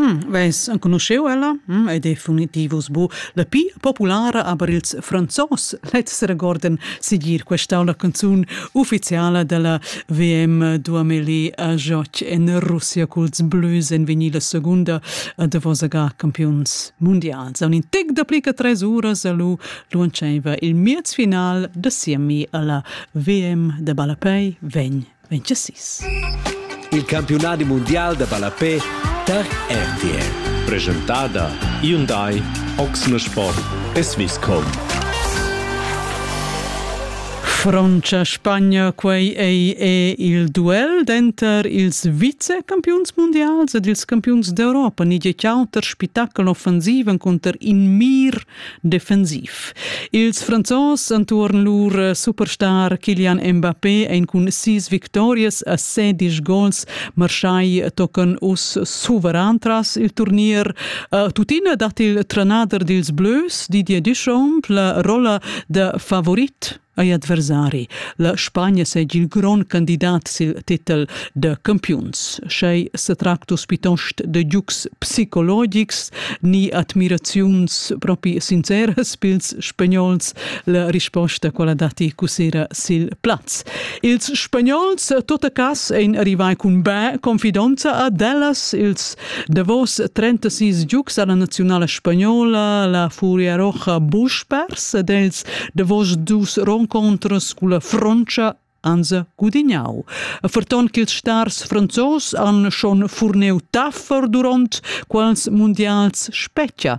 Mm, Vess enconuscheu ella? Mm, ed definitivus bu la pi populara aber ils Franzos. Lezs regorden sigir questa la canzun ufficiala della VM 2000 a joc en Russia culs Blues en vinil la segunda a Davosaga campions mundials. A un intec da plica tres uras a lu lunceva il miez final da siemi alla VM de Balapei vegn mintga sis. Il campiunadi mundial da ballapè tar RTL. Presentada Hyundai Oxne Sport e Swisscom. Frontscha Spagna, quei ei e il duel denter ils vicecampiuns mundials ed ils campiuns d'Europa. Ni tgei auter spitacol offensiven cunter in mir defensiv. Ils Franzos entuorn lur superstar Kylian Mbappé ein cun sis victorias a sedisch gols marschai tocan uss suveran tras il turnier. Uh, tuttina dat il trenader dils Blues Didier Deschamps la rolla da favorit ei adversari. La Spagna seigi il grond candidat sil titel de campiuns. Schei setractus piuttost de giugs psicologics ni admiraziuns propi sinceras pils spagnols, la risposta quella dati cusera sil plaz. Ils spagnols, tot a cas, ein arrivai cun bè confidonza ad ellas, ils Davos 36 giugs ha la naziunala spagnola la Furia Roja buc pers ed els davos dus renconters culla Frontscha anza gudignau. Ferton ch'ils stars franzos han schon furneu taffar duront quals mundials spetga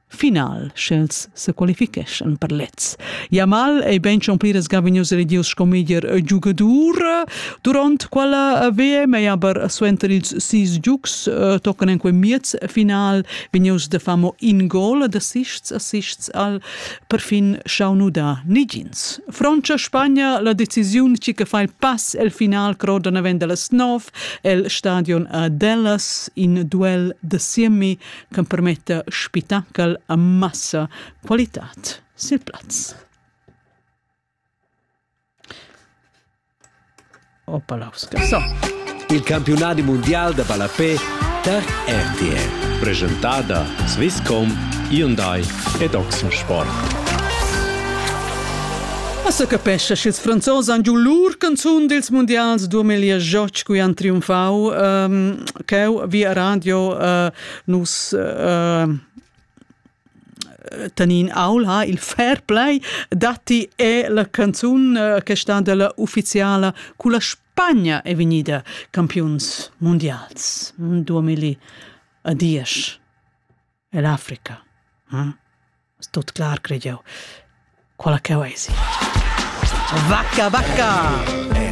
final, sch'els se qualificheschan per lez. Jamal ei ben schon pliras gavignus redius sco meglier giugadur duront quella VM e aber suenter ils sis giugs eh, tocan en quei miez final vegnius de famo in gol de sists assists al perfin schaunuda nigins. Francia Spagna la decisiun ci che fa il pass el final croda naven dallas 9 el stadion a Dallas in duel de semi ch'empermetta spitachel a massa qualitad sil plaz. Opalauska so. Il campiunadi mundial da ballapé tar RTL. Presentada Swisscom, Hyundai ed Oxensport. Assa capescha sch'ils Franzos han giu lur canzun dils mundials 2018 cui han triumfau. Um, cheu via radio uh, nus uh, tenin aul ha il fair play datti è la canzun uh, che sta della ufficiala culla Spagna è vegnida campiuns mondials 2010 e l'Africa hm? tot clar credo quella che è vacca vacca